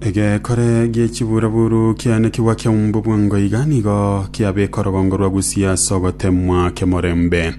egekore gie chiburaburu kiane kigwa kia umbu bwango iga nigo kiabeka orogongo rwa gusia ase ogotemwa kemorembe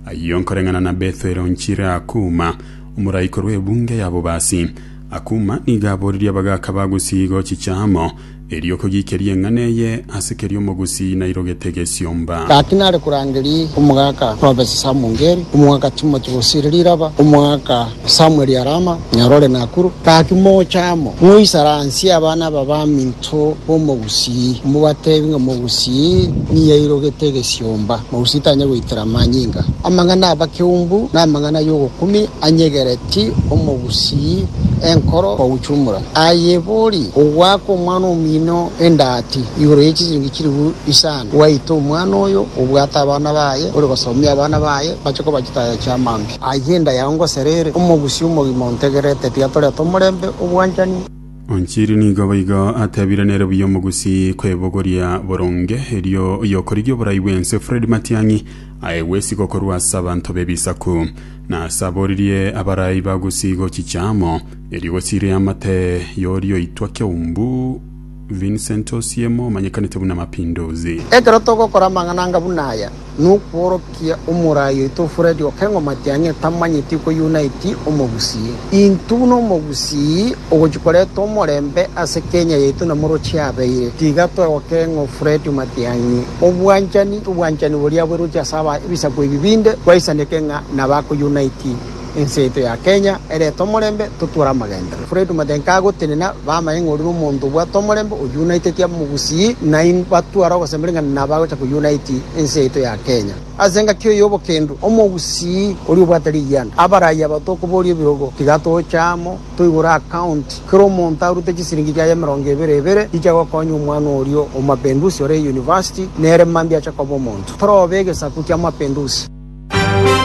ayio nkoreng'ana na bethwero nchire akuma omoraikorwa ebunge ya bobasi akuma nigo aboririe abagaka ba gusia igo chichamo Erio kogiikeria eng'ana eye ase keria omogusii nairogete egesiomba. Gaki nare korangeria omogaka Robesi Samungeri, omogaka Timoti Bosiri Riraba, omogaka Samueli Arama, nyaro ore Nakuru. Gaki mocha amo, moisaransie abana aba baminto b'omogusii, mobateebie ng'a omogusii niye airogete egesiomba, omogusii tanyare goitera amanyinga. Amang'ana abakeumbu namang'ana y'ogokumia anyegereti omogusii enkoro koguchumura. Aye bori ogoaka omwana omino endati igoro ye chisiringi chilifu isano, gwaita omwana oyo obwate abana baye, ore gosomia abana baye, bache koba chitaya chia maambia. Aye endaya ngosera ere, omogusi omogima ontegerete, tiga toreta omorembe obwanchani. Onchiri nigo boigo atebire nere buya omogusi kwebogoria boronge, erio oyokorigia oborai bw'ense Fred Matiang'i aye gwesigo korwa ase abanto b'ebisaku, na ase aboririe abarai bagusi gochicha amo. Erigosi ri'amate y'oria oitwa Keumbu Vincent Osiemo omanyekanete buna Mapinduzi. Ekero togokora amang'ana anga buna aya, nokworokia omoraai oito Fred Okengo Matiang'i otamanyeti koyunaiti omogusii. Intwe buna omogusii ogochi koreta omorembe ase Kenya yaito na morochio abeire, tiga toe Okengo Fred Matiang'i obwanchani, obwanchani boria bwerochio ase aba ebisaku ebi binde, twaisaneke ng'a nabakoyunaiti. Ense yaito ya Kenya erete omorembe totware amagenderero. Fred Matiang'i agotenena bamanye ng'a oria nomonto obwate omorembe oyunaitetie abamogusii nainwe batware ogosemeria ng'a nabo agocha koyunaiti ense yaito ya Kenya. Ase engaki eye y'obokendu, omogusii oria obwate rigianda abe arai aba tokoboria ebirogo tiga tocha amo toigure akaunti kera omonto arute chisiringi chiaye emerongo ebere ebere chicha gokonya omwana oria o Mapinduzi ore eyunivasiti nere mambia ache koba omonto. Torobe egesaku kia Mapinduzi.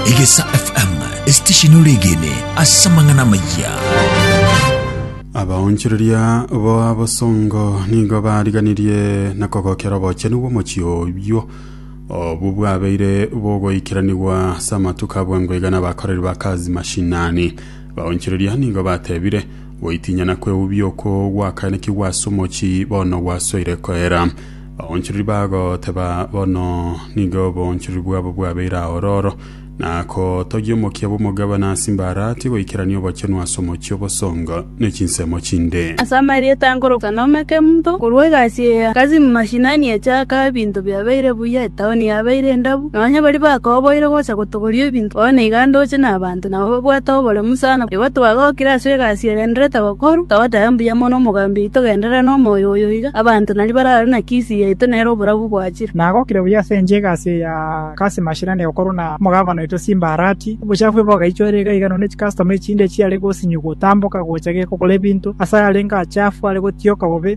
Egesa FM, esitesheni oregene ase amang'ana amayia. abaonchoreria boa bosongo nigo bariganirie na kogokera obochenu bw'omochie oyio obwo bwabeire bogoikeranigwa ase amatuko abwango iga n'abakoreri ba kazi mashinani baonchoreria nigo batebire goitinyana kweubia oko gwakaenekigwa ase omochie bono gwasoire koera Baonchoriri bagoteba, Bono nigo oboonchoriri bwabo bwabeire aororo, na kotogia omokia bw'omogabane ase imbarati goikerania obochenu ase omochie o bosongo ne chinsemo chinde. Ase amarieta nkoroka n'Omekemunto, korwa egasi eye Kasim Mashinani echaka, ebinto biabeire buya, etaoni yabeire endabu, nonya baria bakoboire gocha gotogoria ebinto, bono iga ndoche nabanto. nabo babwate oboremu sana. Igo twagokire ase egasi egendererete gokorwa, togateba mbuya mono omogambi oito genderera nomoyo oyo iga, abanto naria barare na kisi yaito nere oborabu bwachire. Nagokire buya ase enchera egasi eye ya Kasim Mashirane gokorwa na omogavana oito Simba Arati. Obochafu obo bogaichorera iga iga nonya chicustom echinde chiare gosinyigwa gotamboka gocha gekogora ebinto ase ayarenge achafu are gotioka bobe.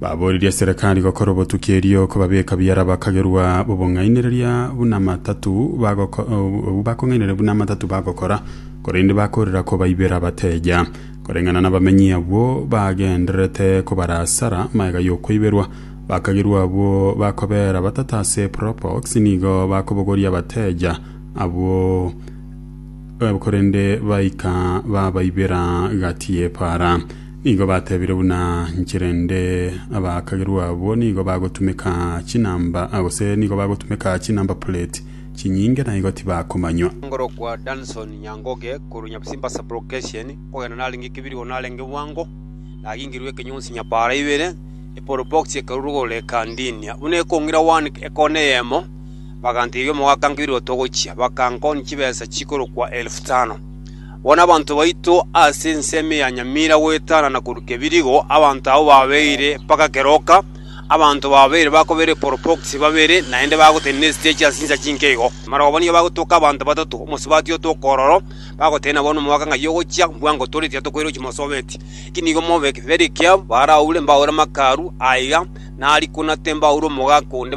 Baboririe Serikali gokora obotuki erio kobabeka buya abakagerwa b'obong'ainereria buna amatatu bagoko- obwo bakong'ainereria buna amatatu bagokora, korende bakorera kobaibera abateja. Koreng'ana nabamenyi abwo bagendererete kobarasara magega y'okweiberwa, bakagerwa abwo bakobera batata ase Propox nigo bakobogoria abateja abwo korende baika babaibera gati y'epaara. Nigo batebire buna inche rende abakagerwa abwo nigo bagotumeka chinamba gose nigo bagotumeka chinamba plate chinyinge na igo tibakomanywa. Ngorokwa Danson Nyangoge korwa Nyabisimba sub location, okogenda narenge kebirigoro narenge bwango, nagingerwe ekenyonsi nyabaara ibere, epower box ekarurwa igoro ekandinia buna ekong'ira one ekona eyemo, bagantebia omogaka nkebirigoro togochia, bakankonia chibesa chikorokwa elfu tano. Bono abanto baito ase ensemo ya nyamira goetana na koruka ebirigo, abanto abwo babeire mpaka keroka. Abanto babeire bakobera eporobokisi babere, naende bagotenena esitechi ase chinsa chinke igo. Amarogobani nigo bagotoka abanto batato, omosubati otoka ororo, bagotenena bono omwaka ng'ai ogochia, mbwango tore tiyatokoire ochimosobeti. Eki nigo mobe ekeberio kiabo, baaraure mbaure amakaru aiga, na ariko na tembaure omogaka onde,